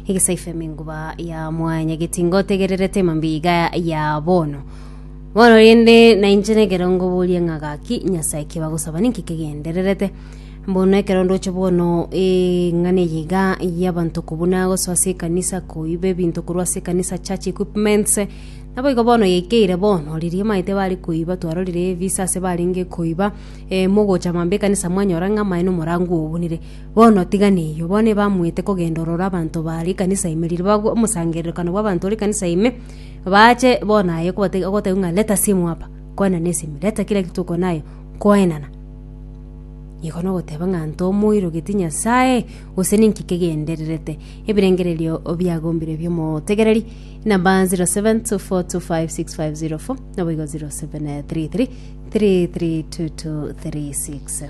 Egesaifa emenguba ya mwanyageti ngotegererete mambia iga ya bono. Bono rende nainche nekero ngoboria ng'a gaki Nyasae ki bagosaba ninki kegendererete. Bono ekero ndoche bono eng'ana eye iga y'abanto kobuna gosoa ase ekanisa koiba ebinto korwa ase ekanisa church equipments naboigo bono yaikeire bono riria emaete bare koiba twarorire ebisa ase barenge koiba eh, mogocha mambia ekanisa mwanyora ng'a amaene omorango obunire Bono tiga neyio, bono ebamoete kogenda ororo abanto ba rikanisa ime riria bagwo, omosangererekano bw'abanto o rikanisa ime, baache bono aye kobatebia ogobatebia ng'a leta simu hapa, koenana esimi, leta kira egetwe oko naye, koenana. Iko nogoteba ng'a nto omoirogeti Nyasae, gose ninki kegendererete ebirengererio biagombire bi'omotegereri, number 0724256504, naboigo 0733332236.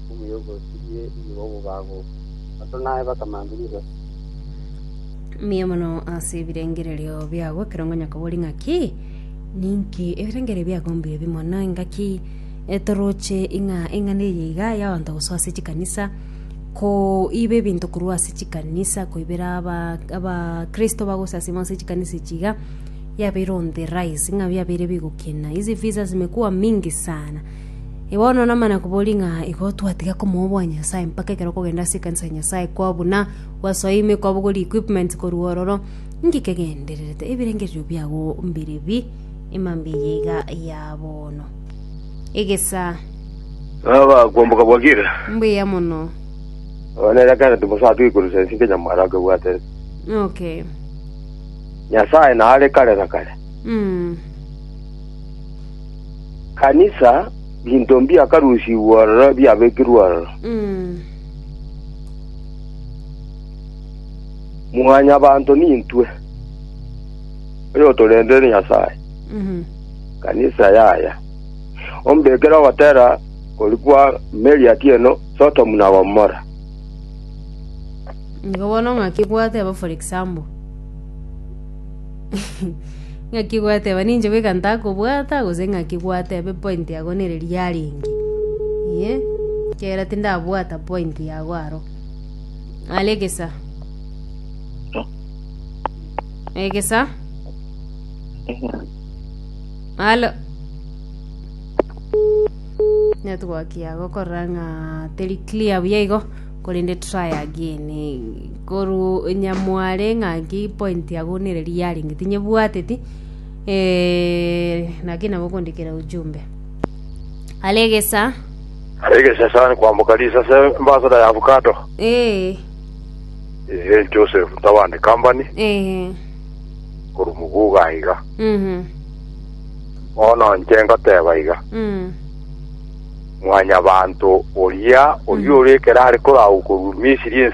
enkumu y'oboruoti bwe nigo bogagoka. Abanto naye bakamange rirorio. Mbuya mono ase ebirengererio biago ekero ngonyakobori ng'aki ninki ebirengererio biago mbuya bi mono engaki e, toroche ing'a eng'ana eye iga yaonto gosoa ase chikanisa koiba ebinto korwa ase chikanisa koibera aba abakristo bagosasima ase chikanisa echi iga yabeire on the rise ng'a yabeire bigokina hizi visa zimekuwa mingi sana. Bono namana koboria ng'a igo twatiga komoboa Nyasae mpaka ekero okogenda ase ekanisa ya Nyasae kwao buna gwasoa ime kwabogori equipment korwa ororo. Inki kegendererete ebirengererio biago mbire bi emambia eye iga ya bono? Egesaa. Baba kwamboka bwakire. Mbuya mono. Abana era kana timosa twikurusa ensi kenya mwara akebwatere. Okay. Nyasaye na are kare na kare. Mm. Kanisa, binto mbiakarusigwe ororo biabekirwe ororo. Mwanyabanto nintwe, oyotorendeire Nyasae, Kanisa yaye. Ombekere ogotera kori kwa meri atieno Sodomu na Gomora. Nigo bono ng'aki bwate aba for example. Ng'aki gwateba ninche goika ntakobwata gose ng'aki gwateba epointi yago nere riarenge? Inye ekiagera tindabwata pointi yago aro. Are egesa. Egesa. Alo. Network yago korora ng'a teri clear buya igo. Korende torayagie koruunya mware ng'aki point yago nere riarenge tinyebwateti eeh naki nabo okondikera ujumbe are egesa Are egesa sana kwamboka risase embasada ya avocado. eeh Ehe Joseph Ntabane Company eeh korwa Muguga iga. mhm Bono inche ngoteba iga. mm. Mwanyabaanto oria, oria ore ekero are koragwa korwa Misiri, ense